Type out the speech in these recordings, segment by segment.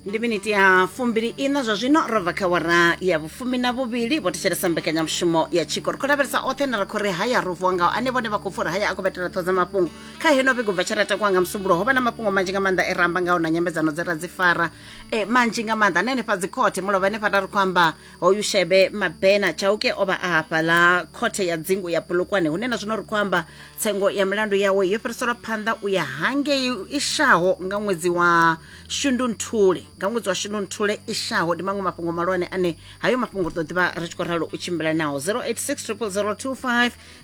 ndi miniti ya fumbili ina zwa zwino ro bva kha wara ya vhufumi na vhuvhili vho thetshelesa mbekanyamushumo ya tshiko ri khou lavhelesa oṱhe na ri khou ri haya ro vuwa ngao ane vhone vha khou pfa uri haya a khou vhetela ṱho dza mafhungo kha heno vhigo bva tsheleta kwa nga musumbulo ho vha na mafhungo manzhi nga maanḓa e ramba ngao na nyambedzano dze ra dzi fara e manzhi nga maanḓa na henefha dzikhothe mulovha henefha ra ri khou amba hoyu shebe mabena chauke o vha a hafhaḽa khothe ya dzingu ya polokwane hune na zwino ri khou amba tsengo ya milandu yawe yo fhiriselwa phanḓa u ya hangei i shaho nga ṅwedzi wa shundunthule nga ṅwedzi wa shundunthule i shaho ndi maṅwe mafhungo malwane ane hayo mafhungo ri ḓo ḓivha ri tshi khou ralo u tshimbila naho 086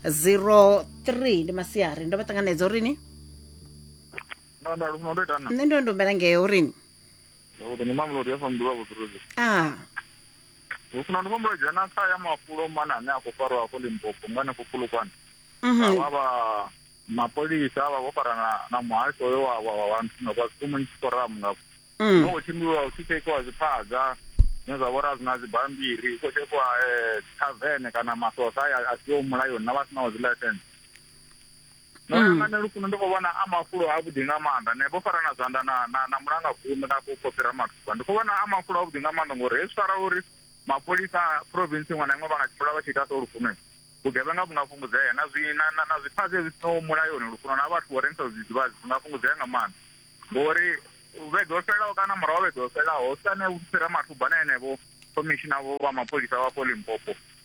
0002503 ndi masiari ndo vha ṱanganedza urini no no lufuno ndo ita na nṋe ndo ndombela ngeo urini Zwavhuḓi ndi Mamelodi FM ndi vha Vhuḓuruzi. Ah. Hu funa ndi vhombo dzhena kha ya mafulo mana ane a khou farwa afho Limpopo nga hanefho Pfulukwane. Mhm. Vha vha mapholisa vha vho farana na muhasho hoyo wa wa wa nthu nga kwa Community Forum nga. Mm. Ho tshimbiwa hu tshi tshekhiwa zwiphaga zwine zwa vhora zwina dzi bambiri, hu khou tshekhiwa eh tavern kana maswotha a siho mulayoni na vha sinaho dzi license. ndo hmm. langa nelukuno ndi khou vhona a mafulo avhuḓi nga maanḓa ne vho farana zwanḓa na na na mulanga khume na vho fhira mathuba ndi khou vhona a mafulo avhuḓi nga maanḓa ngori hezwi fara uri mapholisa province iṅwe na iṅwe vha nga tshimbila vha tshi ita so lufuno vhugevhenga vhu nga fhungudzea na zwi na na na zwifhaṱe zwi sinaho mulayoni lufuno na vhathu vho rengisa zwidzidzivhadzi zwi nga fhungudzea nga maanḓa ngori vhege ho fhelelaho kana murahu vhege ho fhelelaho sane u fhira mathuba na enevho khomishina vho vha mapholisa vha fo limpopo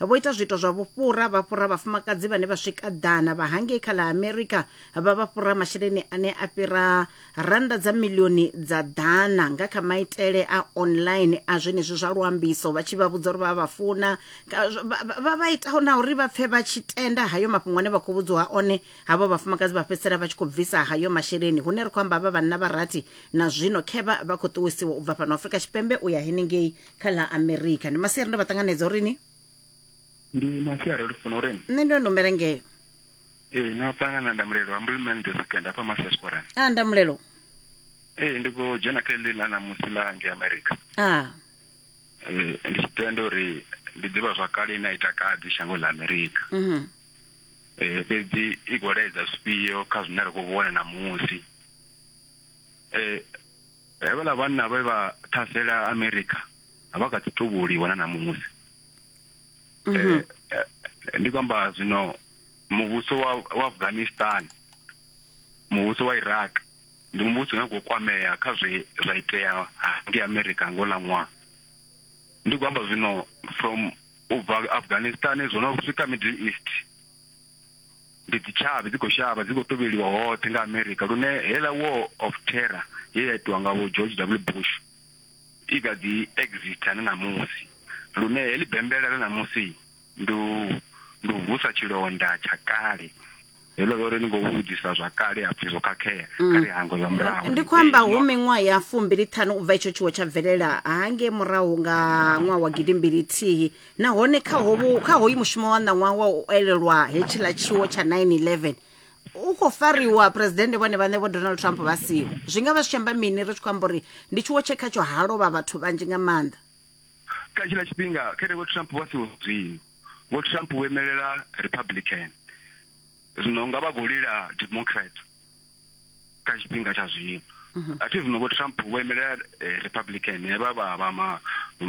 Vho ita zwiito zwa vhufhura, vha fhura vhafumakadzi vhane vha swika ḓana vha hangei kha ḽa Amerika, vha vha fhura masheleni ane a fhira rannda dza miḽioni dza ḓana nga kha maitele a online a zwenezwi zwa luambiso, vha tshi vha vhudza uri vha vha funa, vha vha itaho na uri vha pfe vha tshi tenda hayo mafhungo ane vha khou vhudziwa one. Havho vhafumakadzi vha fhedzisela vha tshi khou bvisa hayo masheleni, hune ri khou amba havha vhanna vha rathi na zwino khevha vha khou ṱuwisiwa u bva fhano Afrika Tshipembe u ya henengei kha ḽa amerika ndi masiari ndo vha ṱanganedza uri ni ndi masiari ri funa uri nṋe ndo nombela ngeo ee no ṱangana na ndamulelo ambulman the second afha masiasporan a ah, ndamulelo ee ndi khou dzhena kha ḽi ḽa ṋamusi ḽa nge amerika a ah. ee ndi tshi tenda uri ndi ḓivha zwakale ine a ita kadzi shango ḽa amerika mhm. ee fhedzi i khou laedza zwifhio kha zwine ra khou vhona ṋamusi ee Hevhaḽa vhanna vhe vha ṱhasela Amerika a vha kha ḓi tou vhuliwa na ṋamusi. Ndi khou amba zwino muvhuso wa wa Afghanistan, muvhuso wa Iraq ndi muvhuso une wa khou kwamea kha zwe zwa itea ngei Amerika nga houḽa ṅwaha. Ndi khou amba zwino from ubva Afghanistan zwo no swika Middle East. Ndi dzitshavhi dzi khou shavha dzi khou tovheliwa hoṱhe nga America lune heiḽa war of terror ye ya itiwa nga vho George W Bush i kha ḓi exita na ṋamusi lune heḽi bembela ḽa ṋamusi ndi u ndi u vusa tshilonda tsha kale heḽo ḽa uri ni khou vhudzisa zwa kale ha pfhi zwo khakhea kha ri hangwe zwa murahu ndi khou amba hu miṅwaha ya fumbili ṱhanu u bva itsho tshiwo tsha bvelela hangei murahu nga ṅwaha wa gidimbili thihi nahone kha hovhu kha hoyu mushumo wa ṋaṅwaha wa u elelwa hetshiḽa tshiwo tsha 911 u khou fariwa presidennde vhone vhaṋe vho donald trump vha siho zwi nga vha zwi tshi amba mini ri tshi khou amba uri ndi tshiwo tshe khatsho ha lovha vhathu vhanzhi nga maanḓa kha tshiḽa tshifhinga khere vho trump vha siho zwino vho trump vho imelela republican zwino nga vha khou lila democrat kha tshifhinga tsha zwino mhm. a thi vhuno vho trump vho imelela eh, republican he vha vha vha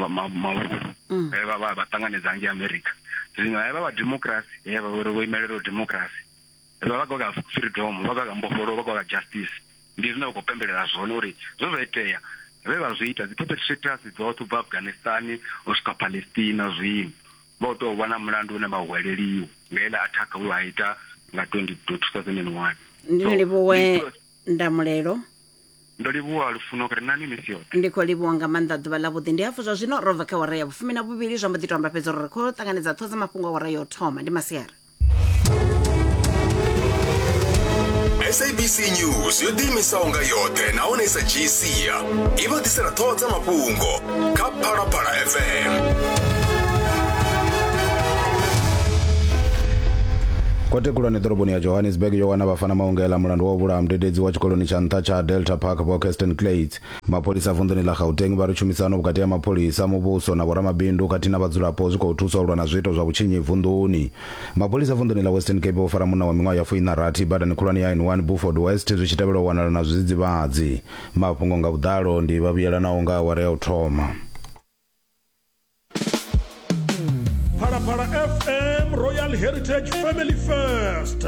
mavhulu mm. he vha vha vha ṱanganedza ngei america zwino he vha vha democracy he vha vhori vho imelela democracy vha vha goga freedom vha goga mbofholo vha goga justice ndi zwine vha khou pembelela zwone uri zwo zwa itea vhe vha zwi ita dzi perpetrators dzoṱhe ubva afghanistan u swika palestina zwino Vho tou vha na mulandu une vha u hweleliwa nga iḽa athakha we a ita nga 2021. Ndi ni livhuwe ndamulelo. Ndo livhuwa lufuno kha ri nani misi yoṱhe. Ndi khou livhuwa nga maanḓa ḓuvha ḽavhuḓi ndi hafhu zwa zwino ro bva kha awara ya vhufumi na vhuvhili zwa mbo ḓi tou amba fhedzi uri ri khou ṱanganedza ṱhoho dza mafhungo awara ya u thoma ndi masiari. sabc news yo ḓiimisaho nga yoṱhe nahone i sa dzhii sia i vha ḓisela ṱhoho dza mafhungo kha phalaphala fm kote khulwane ḓoroboni ya johannesburg yo wana vhafana maungela mulandu wa u vhulaha mudededzi wa tshikoloni tsha nṱha tsha delta park vho kirsten clates Mapholisa vunḓuni ḽa Gauteng vha ri tshumisano vhukati ha mapholisa, muvhuso na vhoramabindu khathihi na vhadzulapo zwi khou thusa u lwa na zwiito zwa vhutshinyi vunḓuni. Mapholisa vunḓuni ḽa Western Cape vho fara munna wa miṅwaha ya fuiṋarathi badani khulwane ya N1 Burford West zwi tshi tevhela u wanala na zwidzidzivhadzi. Mafhungo nga vhuḓalo ndi vha vhuyelanaho nga awara ya u thoma. Phalaphala FM Royal Heritage Family First.